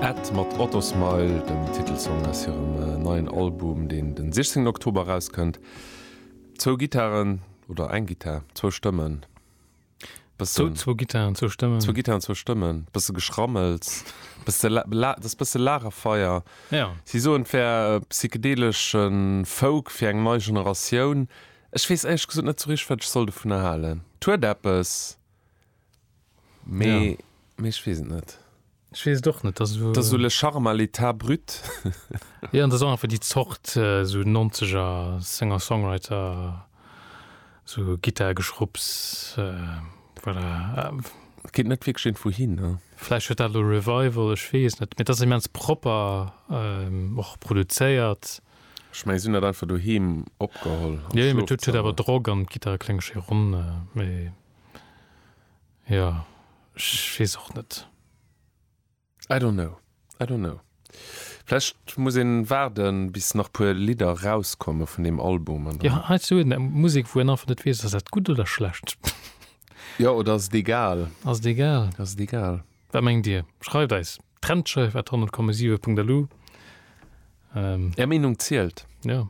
Ed mat Autosmile, dem Titelsong aus hirem neien Album, deen de 16 Oktober erauskënnt. Zwou Gittaren, oder eng Gittar, zwou Stëmmen, bëssen. Zwou Gittaren, zwou Stëmmen. Zwou Gittaren, zwou Stëmmen, bësse Geschrammels, bësse dat ass bësse Lagerfeier. Jo. Si soen, et wär psychedelesch Folk fir eng nei Generatioun. Ech weess éierlech gesot net esou richteg, wat ech soll dovunner halen. Et huet eppes. Mee, mee ech weess et net. Ech weess et och net. Dat ass esou le charme à l'état brut. Jo, an dat ass och einfach déi Zort esou nonzeger Singer-Songwriter, esou Gittar-Geschrupps, voilà. Et geet net wierklech een wouhin, ne? Vläicht huet dat elo e Revival, ech weess et net. Mee et ass immens propper och produzéiert. Ech mengen, si hunn dat einfach doheem opgeholl. Jo, jo, mee et huet awer Drock an d'Gittar klénge schéi ronn. Mee. Jo, ech weess och net. I don't know, I don't know. Vläicht muss een waarden bis nach puer Lidder erauskommen vun deem Album an dann. Jo, heiansdo huet en Musek wou een einfach net weess ass dat gutt oder schlecht. Jo, oder ass et egal. Ass et egal. Ass et egal. Wat mengt dir? Schreift eis Trendscheif at 100,7.lu. Är Meenung zielt. Jo.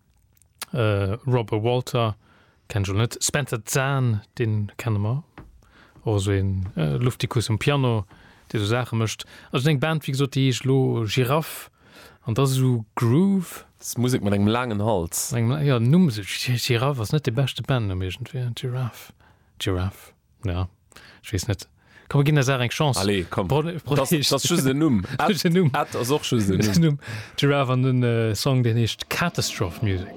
Robert Walter, kenne ech elo net. Spencer Zahn, dee kenne mer, och esou een Luftikus um Piano, dee esou Saache mécht. Also seng Band, wéi gesot, déi heescht elo Giraff an dat ass esou Groove. Dat ass Musek mat engem laangen Hals. Jo, den Numm, Giraff ass net dee beschte Bandnumm iergendwéi, Giraff, Giraff. Ja, ech wees net. Komm mir ginn der Saach eng Chance. Allez, komm. Bro Bro das, das ass just en Numm. Just en Numm. Ed ass och just en Numm. Giraffe an den Song deen heescht Catastrophe Music.